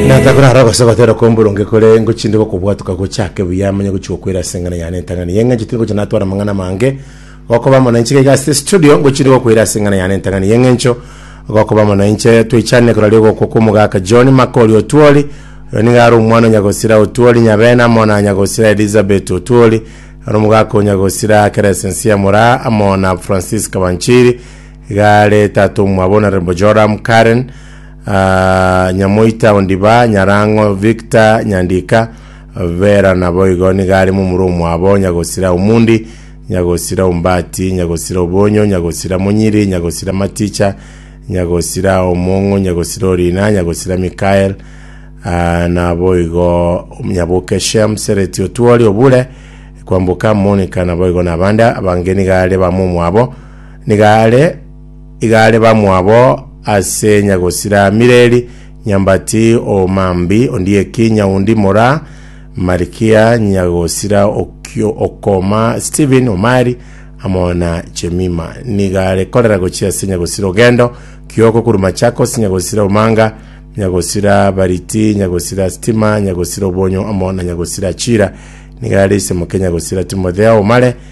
Natakore aro gose gotera kwa omboronge kore ngochinde gokobwatuka gochake buya amanye gochi gokwera ase eng'ana yane entang'ani eye ng'a nchitire gocha natwara amang'ana amange gokoba amo nainche gaiga ase studio ngochinde gokwera ase eng'ana yane entang'ani eye ng'encho gokoba amo nainche twechanire koraria ogokwa kwa omogaka John Makori Otuori oyo nigo are omwana o Nyagosira Otuori Nyabena amo na Nyagosira Elizabeth Otuori ore omogaka o Nyagosira Keresensia Moraa amo na Francis Kabanchiri iga are tata omwabo na Rembo Joram Karen Nyamoita o Ndibaa, Nyarang'o, Victor Nyandika, Vera naboigo nigo are momura omwabo, Nyagosira Omundi, Nyagosira Ombati, Nyagosira Obonyo, Nyagosira Monyiri, Nyagosira Maticha, Nyagosira Omong'u, Nyagosira Orina, Nyagosira Mikael, Ah, naboigo Nyaboke Shem, Sereti Otuori, Obure, Kwamboka, Monica, naboigo nabande abange nigo are bamwe omwabo, nigo are igare bamwabo ase nyagosira Mireri, nyambati o Mambi, ondieki nyaundi mora Marikia, nyagosira o Kio- o Koma, Stephen Omari, amo na Jemima. Nigo are korera gochia ase nyagosira o Gendo, Kioko korwa Machakos, nyagosira o Manga, nyagosira Bariti, nyagosira Stima, nyagosira Obonyo, amo na nyagosira Chira. Nigo are isemoke nyagosira Timotheo Omare,